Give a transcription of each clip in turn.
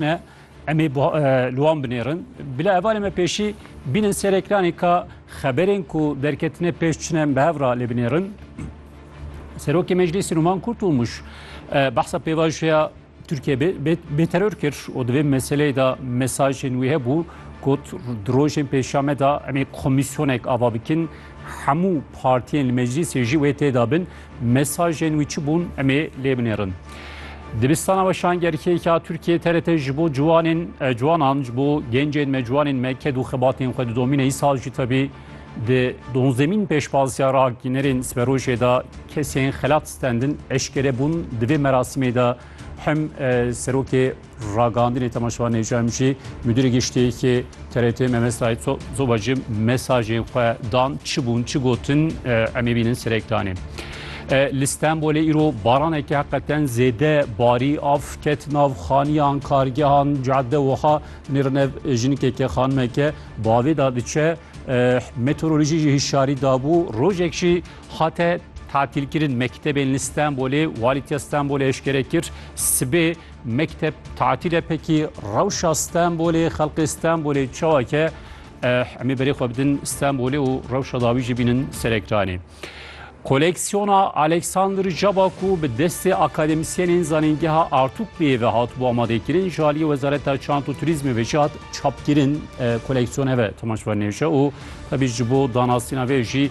Me em ê li wan binêrin. Bila hevalê me pêşî bînin ser ekranê ka xeberên ku derketine pêş çine em bi hev ra lê binêrin. Serokê Meclîsî Numan Kurtulmuş behsa pêvajoya Türkiye bêterör kir û di vê meseleyê de mesajên wî hebû got di rojên pêşame de em ê komisyonek ava bikin Hemû partiyên li meclîsê jî wê têda bin. Mesajên wî çi bûn em ê lê binêrin. Dibistana weşan gerkêka Tirkiye TRT ji bo ciwanên e, ciwanan ji bo gencên me ciwanên me ked û xebatên xwe didomîne îsal jî tevî di donzemîn pêşbaziya ragînerên siberojê de kesên xelat stendin eşkere bûn di vê merasimê de hem e, serokê Ragihandinê Temaşevan Necam jî Mudîrê Giştiyekê TRT Mehmet Said Soba jî mesajên xwe dan çi bûn çi gotin em ê bînin serek danê. Li Stenbolê îro baraneke heqeten zêde barî av ket nav xaniyan kargehan cadde wiha nêrinev jinikeke xanimeke bavê da diçe meteorolojî jî hişyarî dabû rojek jî hate tatilkirin mektebên li Stenbolê walîtiya Stenbolê eşkere kir sibê Mekteb tatil e pekî rewşa Stenbolê xelqê Stenbolê çawa ke eh, emê berê xwe bidin Stenbolê û rewşa dawî jî bînin serekranê. Koleksiyona Alexander Caba ku bi destê akademisyenên zanîngeha Artûkliyê ve hatibû amadekirin ji aliyê Wezareta Çant û Turîzmê ve jî hat çapkirin. E, Koleksiyon heve temaşvanê ji û tevî ji bo danasîna vê jî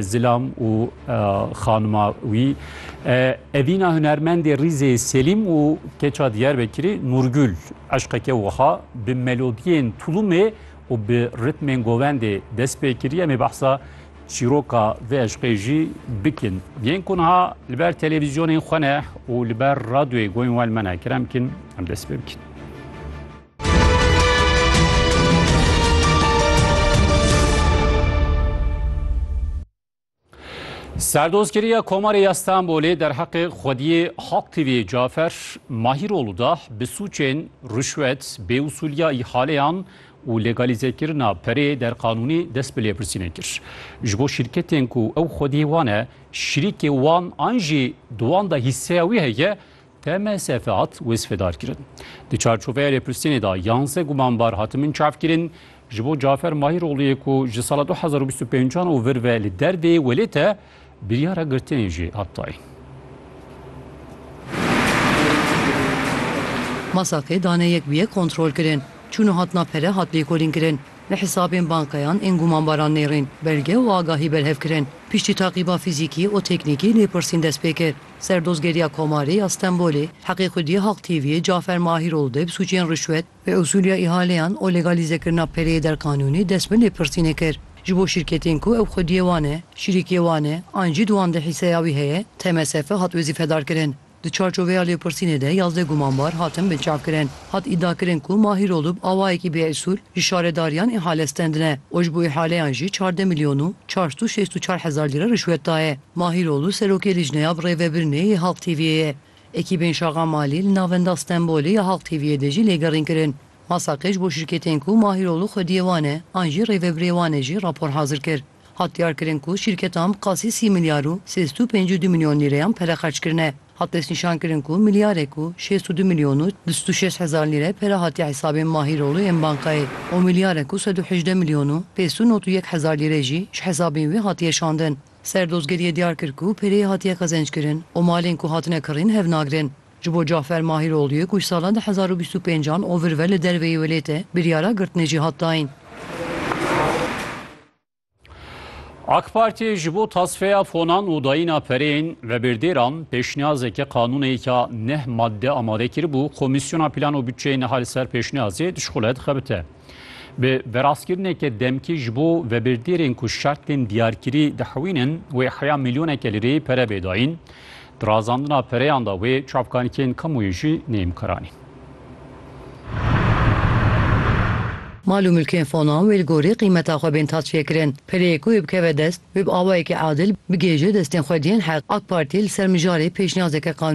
Zilam û xanima wî evîna hunermendê rîzê Selîm û keça Diyarbekirê Nûrgul eşqeke wiha bi melodiyên tulumê û bi ritmên govendê dest pê kiriye mê behsa çîroka vê eşqê jî bikin. Yên ku niha li ber televîzyonên xwe ne û li ber radyoyê goyên we li me ne kirem kin em dest pê bikin. Serdozgeriya Komarê ya Stenbolê derheqê xwediyê Halk TV'yê Cafer Mahîrolu da bi sûçên ruşwet, bêusûliya îhaleyan û legalîzekirina perê derqanûnî dest bi lêpirsînê kir. Ji bo şîrketên ku ew xwediyê wan e, şirîkê wan an jî di wan de hîsseya wî heye, TMSF hat wêsfedarkirin. Di çarçoveya lêpirsînê de yanzdeh gumanbar hatimin çavkirin. Ji bo Cafer Mahîroglû yê ku ji sala du hezar û bîst û pênc an û vir ve li derdê welêt e, biryara girtinê jî hat dayîn. Masakê dane yek bi yek kontrolkirin. Çûn û hatina pere hat lêkolînkirin. Li hisabên bankeyan ên gumanbaran nêrîn belge û agahî berhevkirin. Piştî taqîba fîzîkî û teknîkî lêpirsîn dest pê kir. Serdozgeriya Komarê ya Stenbolê heqê xwedî ya Halk TV'ê Cafer Mahîrol de bi sûcên rişwet, bêusûliya îhaleyan û legalîzekirina pereyê derqanûnî dest bi lêpirsînê kir. Ji bo şîrketên ku ew xwediyê wan e, şîrîkiyê wan e an jî di wan de hîseya wî heye, TMSF hat wezîfedarkirin. Di çarçoveya lêpirsînê de yazdeh gumanbar hatin binçavkirin. Hat îdiakirin ku Mahîrol û bi awayekî bêusûl ji şaredariyan îhale stendine û ji bo îhaleyan jî çardeh milyon û çar sed û şêst û çar hezar lîre rişwet daye. Mahîroğlu serokê Lijneya bi Rêvebirinê yê Halk TV'ê ye. Ekîbên Şaqa Malî li Navenda Stenbolê ya Halk TV'ê de jî lêgerîn kirin. Masakej bo şîrketên ku Mahîroğlu xwediyê wan e an jî rêvebirê wan e jî rapor hazir kir. Hat diyarkirin ku şîrketan bi qasî sî milyar û sê sed û pêncî û du milyon lîreyan pere xerç kirine. Hat destnîşankirin ku milyarek û şêst û du milyon û du sed û şeş hezar lîre pere hatiye hesabên Mahîroğlu ên bankayê û milyarek û sed û hejdeh milyon û pênc sed û nod û yek hezar lîre jî ji hesabên wî hatiye şandin. Serdozgeriyê diyar kir ku pêrê hatiye qezençkirin û malên ku hatine kirîn hev nagirin. Ji bo Cafer Mahîrogluyê ku ji salan du hezar û bîst û pênc an ovir ve li derve yê welêt e, biryara girtinê jî hat dayîn. AK Partiyê ji bo tasfeya fonan û dayîna pereyên vebêrdêran pêşniyazeke qanûneyeke neh madde amade kiribû, Komîsyona Plan û Bütçeyê niha li ser pêşniyazê dişxule dixebite. Bi veraskirineke demkî ji bo vebirdêrên ku şertên diyarkirî dihewînin wê heya milyoneke lireyê pere bê dayîn. Di razandina pereyan de wê çavkanîkên kamuoyê jî neyên bikaranîn. Mal û milkên Fonan wê li gorî qîmeta xwe bên taçêkirin. Pereyê ku wê bikeve dest, wê bi awayekî adil bigihêje destên xwediyên heq. Ak Partî li ser mijarê pêşniyazeke qanûnî